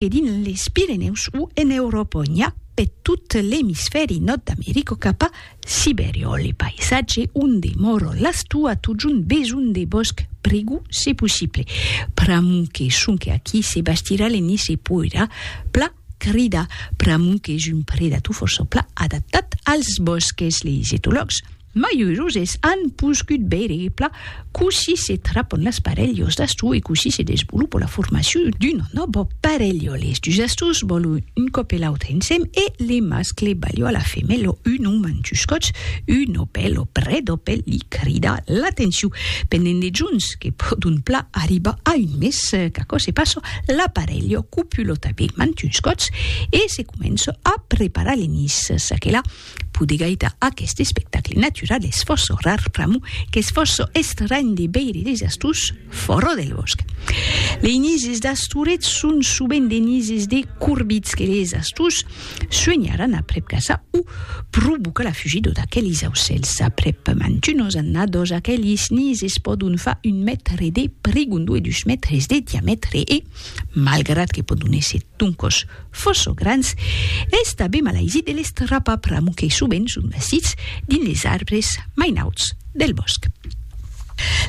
e dins les Pirenèus o en Euròpa n'i a pe tot l'emisfèri nòrd d'America cap a Sibèria o le paisatge onde mòro l'astou a totjorn besonh de bòsc prigou se possible. Pr'amor que sonque aquí se bastirà le nis se poirà pla cridar pr'amor qu'es un predator fòrça pla adaptat als bòsques, leis etològs. Maiusos es an poscut veire e plan cossí se trapon las parelhos d'astor e cossí se desvolopa la formacion d'una nòva parelha. Les dus astors vòlon un còp e l'autre ensèm e le mascle balha la femèla un òm en dus còts, un òpèl o près d'òpèl li crida l'atencion pendent de jorns que pòdon plan arribar a un mes. Qu'aquò se passa, la parelha copula tanben en dus còts e se comença a preparar le nis. Çaquelà Pudi gaita aqueste espectacle natural es fòrça rar pr'amor qu'es fòrça estranh de veire de jastus fòra del bòsc. Lei nises d'Astoret son sovent de nises de corbits que les jastus suenharan aprèp casa o provoca la fugida d'aquelis aucèls. Aprèp mantunas annadas aquelis nises pòdon far un mètre de prigondu e dus mètres de diamètre e, malgrat que pòdon èsser doncas Fòrça grans, es tanben malaisit de l'estrapa pr'amor que sovent son nasits dins les arbres mai nauts del bòsc.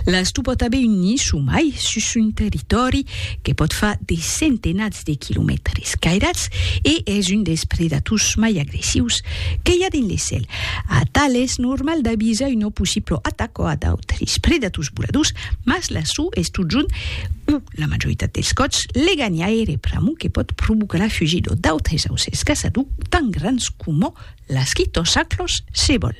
L'astor pòt aver un nid somai sus son territòri que pòt far de centenats de quilomètres cairats e es un dels predators mai agressius que i a dins le cèl. Atal es normal d'avisar una possibla ataca a d'autres predators voladors, mas l'astor es totjorn un. La majoritat dels còps, leganhaire pr'amor que pòt provocar la fugidor d'autres aucèls caçador, tant grans coma las quitosaclos se vòl.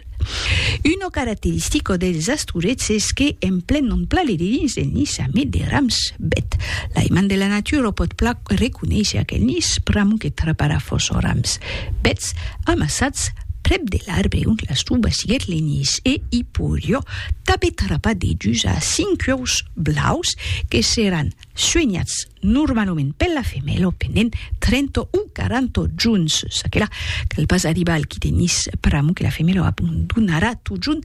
Una caracteristica dels astorets es que en plen non plale de dins del nis ja mai de rams bèt. L'aimant de la natura pòt plan reconéisher aquel nis pr'amor que traparà fòrça rams bèts amassats Prèp de l'arbre ont las tubas lirlenis e Hiporio t'abe trapat de dus a cinc ueus blaus que seràn suenhats normalament per la femèla pendent 30 o 40 juns. Çaquelà cal pas arribar al quite nis pr'amor que la femèla abandonarà totjorn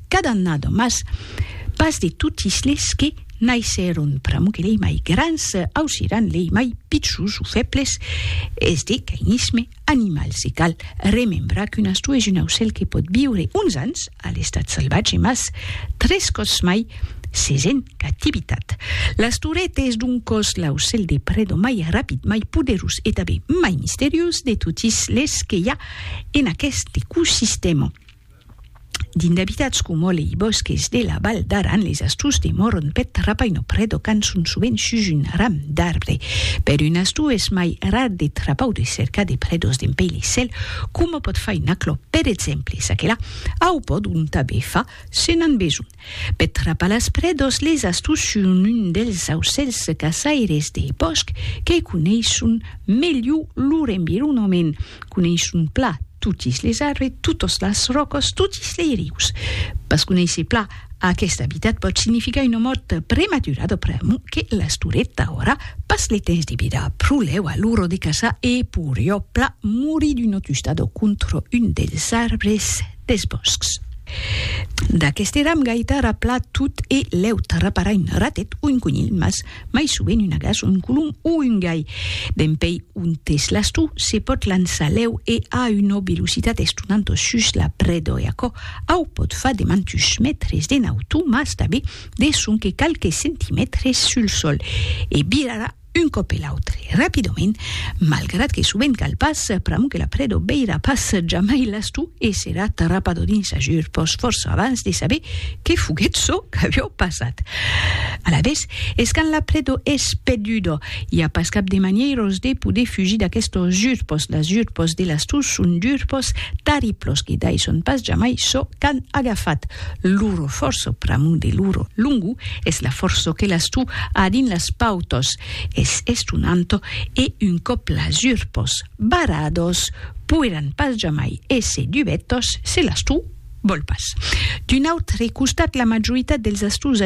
cada annada, mas pas de totis les que naissèron, pr'amor que lei mai grans ausiran lei mai pichus o fèbles, es de cainisme animal, se cal remembrar qu'un astó es un aucèl que pòt viure uns ans a l'estat salvatge mas tres còps mai s'es en cativitat. L'astorèt es doncòs l'aucèl de preda mai rapid, mai poderós e tanben mai misteriós de totis les que i a en aqueste ecosistèma. Dins d'abitads coma lei bòsques de la Val d'Aran, les astús de morron pèth rapaino predocan son sovent sus un ram d'arbre. Per un astú es mai rar de trapau de cercar de predos dempei le cèl, coma pòt far un aclò, per exemple, çaquelà, au pòdon tanben far se n'an besonh. Peth trapalaspre dos les astos son un dels aucèls caçaires dei bòsc que coneisson melhor lor environament, coneisson pla totis les arbres, totas las ròcas, totis lei rius. Pas conéisser pla aqueste abitat pòt significar una mòrt prematurada pr'amor que l'astorèt aurà pas le temps de virar pro lèu a l'ora de caçar e poriá pla morir d'una tustada contra un dels arbres des bòscs. D'aqueste eram gaita ra pla tot e l'èut ra para un ratet o un conilh, mas mai sovent un agàs, un colom o un gai. Dempèi on t'es l'astor, se pòt lançar lèu e a una velocitat estonant sus la preda e aquò au pòt far de mantuns mètres de nautor, mas tanben de sonque qualques centimètres sul sòl e virarà un còp e l'autre rapidament, malgrat que sovent cal pas, pr'amor que la predo veirà pas jamai l'astru e serà tarrapado dins ajur pòs fòrça abans de saber que foguèt çò qu'avió passat. Alavetz, es quand la predo es perduda, i a pas cap de manièros de poder fugir d'aquestos jur pòs, las jur pòs de l'astru son jur pòs tarriplos que daisson pas jamai çò qu'an agafat. Loro forço, pr'amor de loro longo, es la forço que l'as tu a dins las pautos, es estonanto e un còp las urpos barrados poiràn pas jamai èsser dubetos se l'as tu vòl pas. D'un autre costat, la majoritat dels astús